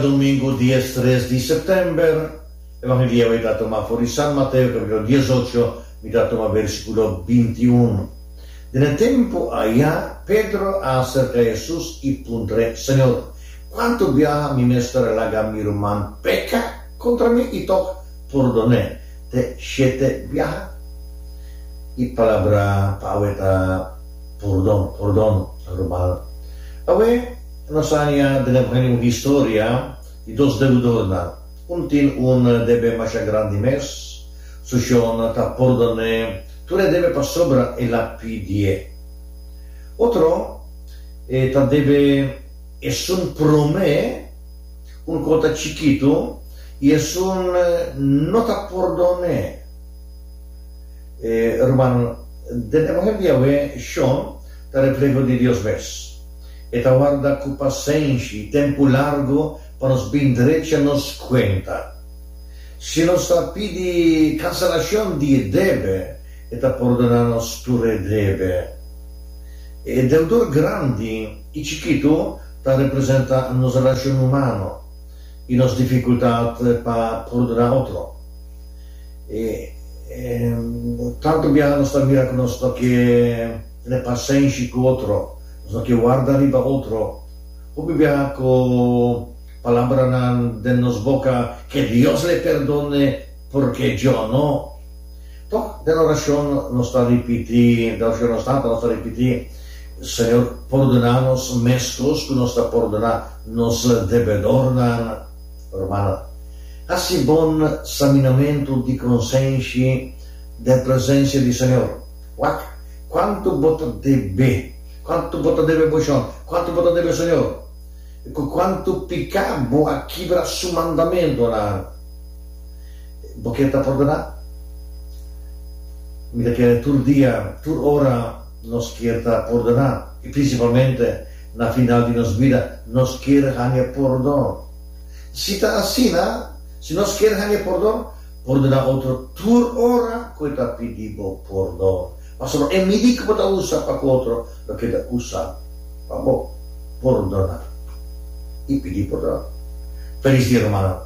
Domingu dies tres di September, Evangelio ei ta tuma for di San Mateo capitulo diesocho, mi ta tuma versiculo bintiuno. Den e tempu aya, Pedro a acerca Jesus i puntrae, Señor, cuantu biaha mi mester a laga mi ruman peca contra mi i tok purdonae? Te shete biaha? E palabra pa awe ta purdon, purdono, ruman. Awe, Nos ania bini aprende un historia di dos deudornan. Un tin un debe masha grandi mes, su shon ta pordon'é tur e debe pa sobra el a pidi'é. Otro e ta debe esun promé un kota chikitu i esun no ta pordon'é. Ruman, den e bohembi awe shon ta refleho di Dios mes. E ta warda ku pasenshi i tempu largu pa nos bin drecha nos kuenta. Si nos ta pidi kanselashon di e debe, e ta pordona nos tur e debe. E deudor grandi i chikitu ta representa nos relashon humano i nos difikultat pa pordona otro. Tantu bia nos ta mira ku nos toke. Tene pasenshi ku otro. Nos no ke warda riba otro. Hopi bia ku palabranan den nos boka, Ke Dios le perdone, porque yo no. Tok den orashon nos ta ripiti, den orashon nos tata nos ta ripiti, Señor, pordona nos meskos ku nos ta pordona nos debedornan. Rumannan, hasi bon saminamentu di konsenshi den presensia di Señor. Wak, Cuanto bo ta debe? Cuanto bo ta debe Boshon? Cuanto bo ta debe Señor? Y cu cuanto pica bo a kibra Su mandamentonan, bo quiere ta pordona? Mi ta kere tur dia, tur ora nos kier ta pordona, y principalmente na final di nos bida, nos kier hanje pordon. Si ta asina, si nos kier hanje pordon, Pordona otro tur ora ku e ta pidi bo pordon, pasobra e midi ku bo ta usa pa ku otro lo keda usa pa bo. Pordona i pidi pordon. Felis dia, rumannan.